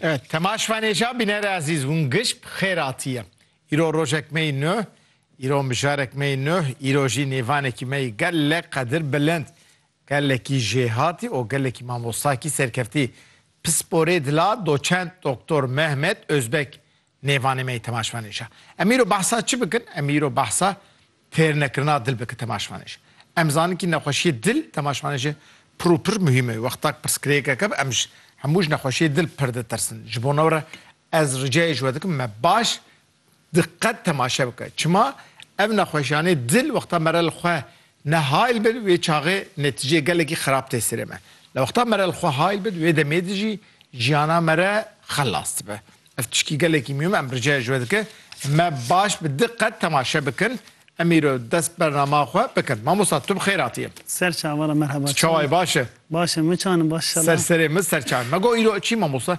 Evet, Tema Şvanêja bînere ezîz hûn giş bi xêr hatiye. Îro rojek me yî nuh, îro mijarek me yî nuh, îro jî nêvanekî me yî gelek qedir bilind. Gelekî jêhatî û gelekî mamostakî serkeftî. Pisporê dila doçent doktor Mehmet Ozbek Nêvanê me yê temaşvanêj a. Em îro behsa çi bikin? Em îro behsa têrnekirina dil bikin temaşvanêj. Em zanin kî nexweşiyê dil temaşvanêjê pir û pir muhîm e. Wexta ku pirsgirêkeke bi em ji hemû ji nexweşiyê dil pir ditirsin. Ji bo newre ez ricayê ji we dikim me baş diqet temaşe bike. Çima ev nexweşiyanê dil wexta me re li xwe Ne hayl bin wê çaxê netîceyê gelekî xerab tê serê me. Li wexta me re li xwe hayl bin wê demê de jî jiyana me re xelas dibe. Ev tişkî gelekî mûhim e em rica ji we dikin me baş bi diqet temaşe bikin. Em îro dest bernama xwe bikin. Mamosta tu bi xêr hatiyê. Ser çav wala merheba. Tu çawa yî baş î? Baş im. Min çawa nin baş inşallah. Ser serê min ser çav î. Me got îro çi mamosta?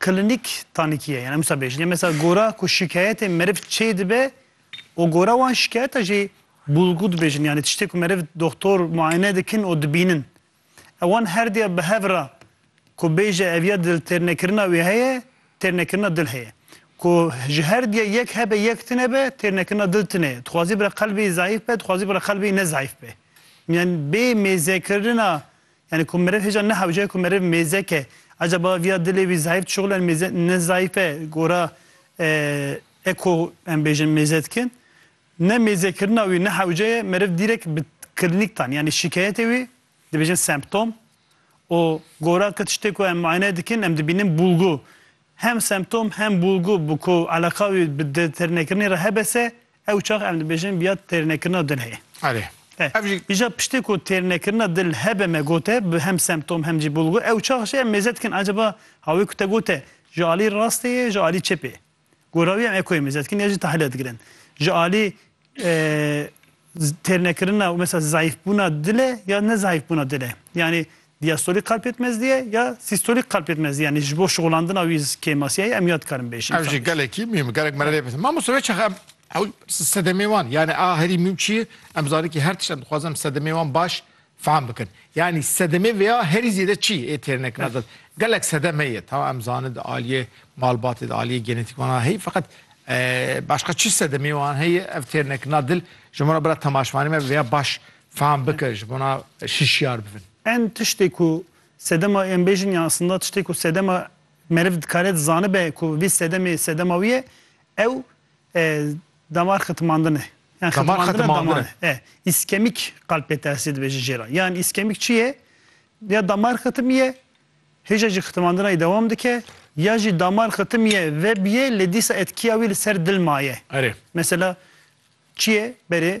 Klinîk tanîkî ye. Yan em wisa bêjin. Yan mesela gora ku şikayetê meriv çê dibe û gora wan şikayeta jî bulgu dibêjin. Yanî tiştê ku meriv doxtor muayene dikin û dibînin. Ewan her diya bi hev ra ku bêje ev ya diltêrnekirina wê heye, têrnekirina dil heye. Ku ji her diya yek hebe yek tune be, têrnekirina dil tune ye. Dixwazî bira qelbê zayîf be, dixwazî bira qelbê ne zayîf be. Yan bê mêzekirina Yanî ku meriv hêja nehewce ku meriv mêzek e. Ecaba vîya dilê wî zayîf dişuxile in mêze ne zayîf e gora e ku em bêjin mêze dikin. Ne mêzekirina wî ne hewce ye meriv dîrek bi klinîktan yanî şîkeyetê wî dibêjin semptom û gora ke tiştê ku em muayene dikin em dibînin bûlgu. Hem semptom hem bûlgu bi ku eleqa wî bi dêtirnekirinê re hebese Ew çax em dibêjin biya têrnekirina dil heye. Erê. Ev jî. Îja piştê ku têrnekirina dil hebe me gote bi hem semptom hem jî bulgu ew çax jî em mêze dikin acaba hawê ku te gote ji alî rastê ye ji alî çepê ye. Gora wî em ekoyê mêze dikin ya jî tahlile digirin. Ji alî têrnekirina û mesela zayîfbûna dil e ya ne zayîfbûna dil e. Yanî Diastolik qalp yetmezlî ye ya sîstolik qalp yetmezlî yanî ji bo şixulandina wî kêmasîyayî em ya dikarin bêjin. Ev jî gelekî mûhîm e. Gelek me re lê pirsin. Mamoste wê çax em ew sedemê wan yanî a herî mûhîm çi ye? Em zanin kî her tişt em dixwazin em sedemê wan baş fehm bikin. Yanî sedemê vêya herî zêde çi ê têrnekina dil? Gelek sedem heye tamam em zanin di aliyê malbatê di aliyê genetîk wan a heye feqet başqa çi sedemê wan heye ev têrnekina dil ji min re bira temaşvanê me vêya baş Fam bike ji bona şişyar bibin. Em tiştê ku sedema em bêjin ya aslında tiştê ku sedema meriv dikare dizanibe ku vî sedemê sedema wî ye ew damar xitimandin e. Yan xitimandina daman e. Îskemîk qalp pê tersî dibe ji jê re. Yan îskemîk çi ye? Ya damar xitimiye hêja jî xitimandinayê dewam dike ya jî damar xitimiye vebiye lê dîsa etkiya wî li ser dil maye. Mesela çi ye berê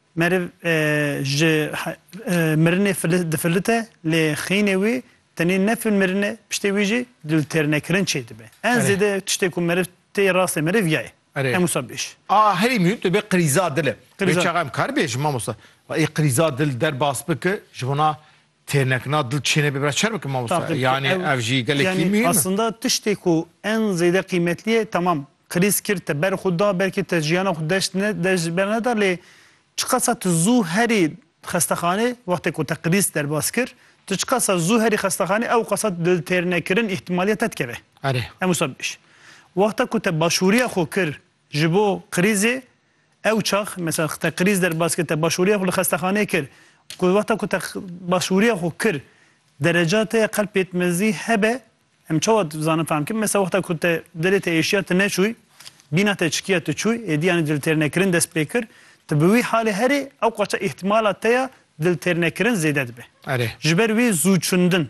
Meriv ji mirinê difilite lê xînê wî tenê ne fil mirine piştê wî jî li têrnekirin çê dibe. En zêde tiştê ku meriv tê rastê meriv ya ye. Em wisa bêj. A herî mûhîm dibe qirîza dil e. Wê çaxa em kar bêjin mamosta. Ê qirîza dil derbas bike ji wana Têr nekin a dil çêne bê bira çer bikin mamosta yani ev jî gelekî mîhim e. Aslında tiştê ku en zêde qîmetlî ye tamam krîz kir te ber xwe da belkî te jiyana xwe deşt ne deş ber neda lê çiqasa tu zû herî xestexanê wextê ku te krîz derbas kir tu çiqasa zû herî xestexanê ewqasa dil têr nekirin îhtîmalîya te dikeve. Erê. Em wisa bêj. Wexta ku te başûrîya xwe kir Ji bo krîzê ew çax mesela te krîz der bas kir, te başvurîya xwe li xestexaneyê kir û ku wexta ku te başvurîya xwe kir dereca te ya qelb pêtmezî hebe, em çawa dizanin fehm bikin mesela wexta ku te dilê te êşiya tu neçûy, bîna te çikiya tu çûy, êdî yanî diltêrnekirin dest pê kir, tu bi wî halê herî ewqaça îhtîmala te ya diltêrnekirin zêde dibe. Erê. Ji ber wî zû çundin.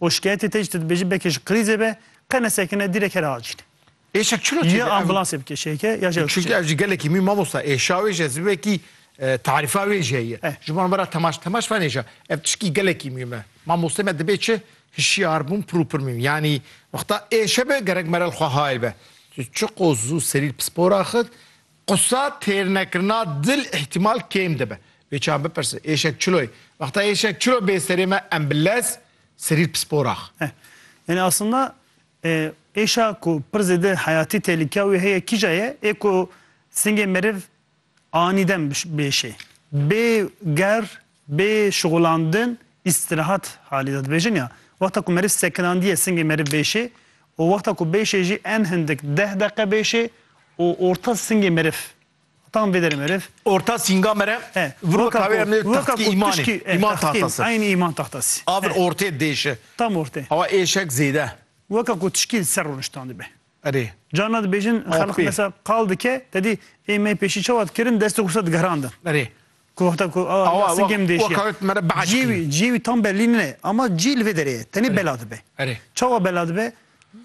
û şikayetê te jî tu dibêjî belkî ji krîzê be, qe nesekine dîrek here acîle. Êşa çilo çêde? Ya ambulansê bike şêke ya jewş. Çunke ev jî gelekî mî mamosta êşa wê jî ez vekî tarifa wê jî heye. Ji bo vera temaş temaş van êşa ev tişkî gelekî mî me. Mamostê me dibê çi hişyar bûn pir û pir mî yanî wexta êşe be gerek me re li xwe hayl be. Tu çiqo zû serî li pispor axist Qisa têrnekirina dil îhtîmal kêm dibe. Wê çav bipirse, êşek çilo ye? Wexta êşek çilo bê serê me em bi lez serîr pisporax. Eh. Yanî aslında êşa ku pir zêde heyatî têlikeya wê heye kîja ye? Ê ku singê meriv anî dem bêşê, bê ger Bê şixulandin îstirahat halî de dibêjin ya wexta ku meriv sekinandiye singê meriv bêşê û wexta ku bêşê jî en hindik deh deqe bêşê û orta singê meriv tam vê derê meriv. Orta singa meriv viro tawê em nê taxtkî îmanê îman taxtası. Eynî îman taxtası. A vir ortê dêşi. Tam ortê. Awa êşek zêde. Weka ku tişkî li ser rûniştan dibe. Erê. Carna dibêjin xelq mesela qal dike tedî ê me pêşî çawa dikirin destê xwe diguherandin. Erê. Ku heta ku a Awa, wa- singê min wa deşiya. kawê me re behs Cî wî, kiriye. cî wî tam bellî nine. Ama cî li vê derê ye. Tenê bela dibe. Erê. Çawa bela dibe?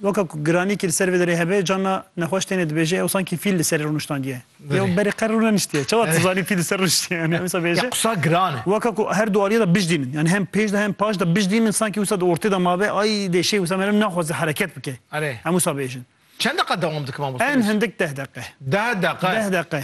Weka ku giranîkî li ser vê derê hebe, carna nexweş tenê dibêje ew sankî fîl li serê rûniştandiye. Erê. Yew berê qer rûneniştiye. Çawa tu zanî fîl li ser rûniştiye? Yanî ewsa Ya bêje. qisa giran e. Weka ku her du aliyê de bijdî min. Yanî hem pêş de hem paş de bijdî min sankî wisa di ortê de mabe ay deşê wisa meriv naxwaze hereket bike. Erê. Em wisa bêjin. Çend deqa dewam dike mamoste? En hindik deh deqe. Deh deqe. Deh deqe.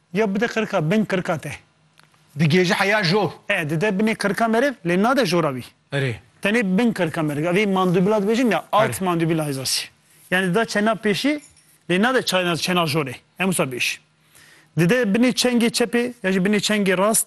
Ya bide qirika bin qirika te. Digêje heya jor. E, dide binê qirika meriv, lê nade jora wî. Erê. Tenê bin qirika meriv. Evî mandubila dibêjin ya, alt mandubila hêzasî. Yanî dida çena pêşî, lê nade çena çena jorê. Hem wisa bêjî. Dide binê çengê çepê ya jî binê çengê rast.